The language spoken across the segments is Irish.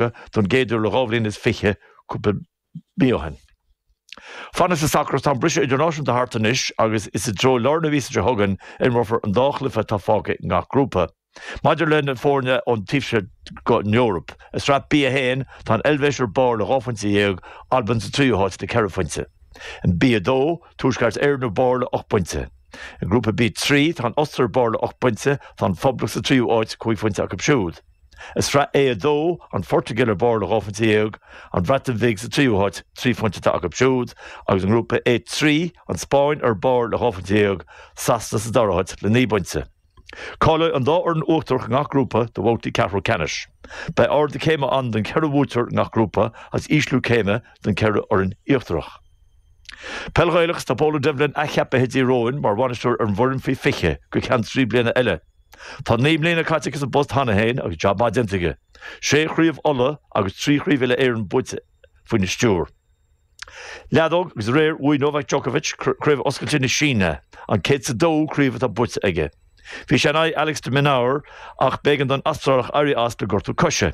Eorpaigh don gcéad uair le dhá bhliain is fiche cúpla mí ó shin. Fanacht sa sacar tá an briseadh idirnáisiúnta thart anois agus is i dtreo lár na míosa seo chugainn a imreofar an dá chluiche atá fágtha i ngach grúpa. Maidir le na foirne ón taobh seo den Eoraip, i sraith B1 tá an Eilvéis ar barr le dhá phointe dhéag, Albain sa tríú háit le ceithre phointe. In B2, Tuaisceart Éireann ar barr le hocht bpointe. I ngrúpa B3, tá an Ostair ar barr le hocht bpointe, tá an Phoblacht sa tríú háit, cúig phointe acu siúd. I Sraith A2, an Phortaingéil ar barr le dhá phointe dhéag, an Bhreatain Bhig sa tríú háit, trí phointe atá acu siúd, agus i nGrúpa A3, an Spáinn ar barr le dhá phointe dhéag, Sasana sa dara háit le naoi bpointe. Cáileoidh an dá fhoireann uachtarach i ngach grúpa do bhabhtaí ceathrú ceannais. Beidh ardú céime ann don cheithre bhuaiteoir i ngach grúpa agus ísliú céime don cheithre fhoireann íochtarach. Peil Ghaelach, Tá Pól Ó Doibhlin athcheapaithe ag Tír Eoghain mar bhainisteoir ar an bhfoireann faoi 20 go ceann trí bliana eile. Tá naoi mbliana caite aige sa bpost cheana féin agus jab maith déanta aige, sé chraobh Uladh agus trí chraobh uile-Éireann buaite faoina stiúr. Leadóg agus aréir bhuaigh Novak Djokovic Craobh Oscailte na Síne, an 102ú craobh atá buaite aige. Bhí sé in aghaidh Alex de Minaur ach b'éigean don Astrálach éirí as le gortú coise.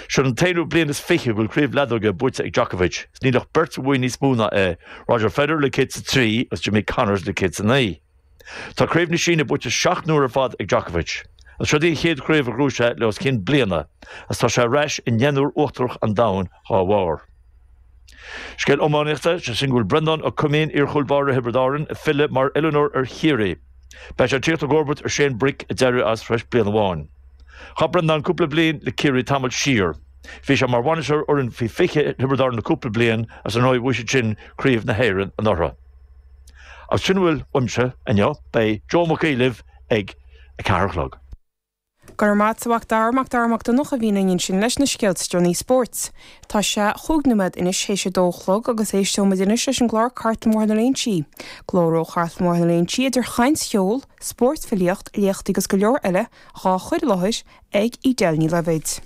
Seo an t-aonú bliain is fiche go bhfuil craobh leadóige buaite ag Djokovic, is níl ach beirt a bhuaigh níos mó ná é, Roger Federer le 103 agus Jimmy Connors le 109. Tá Craobh na Síne buaite seacht n-uair ar fad ag Djokovic. Is seod í an chéad chraobh a ghnóthaigh sé le os cionn bliana agus tá sé ar ais i ndeichniúr uachtarach an domhain dhá bharr. Scéal iománaíochta, is é sin go bhfuil Breandán Ó Cuimín, iarchúl báire Thiobraid Árann, ag filleadh mar oiliúnóir ar Chiarraí. Beidh sé ag tíocht i gcomharbacht ar Shane Brick a d'éirigh as tar éis bliain amháin. Chaith Breandán cúpla bliain le Ciarraí tamall siar. Bhí sé mar bhainisteoir fhoireann faoi 20 Thiobraid Árann le cúpla bliain agus ar ndóigh bhuaigh siad sin Craobh na hÉireann anuraidh. Is sin a bhfuil uaimse inniu. Beidh Joe Mac libh ag a ceathair a chlog. Go raibh maith a't, a Mhac Dara, Mac Dara Mac Donncha a bhíonn linn ansin leis na scéalta deireanaí spóirt. Tá sé chúig nóiméad anois théis a dó a chlog agus éisteoidh muid anois leis an gclár Cartlann Bhóthar na Léinsí. Glór ó Chartlann Bhóthar na Léinsí idir chaint, cheol, spórt, filíocht, léachtaí agus go leor eile dhá chuir i láthair ag Edel Ní Loibhéid.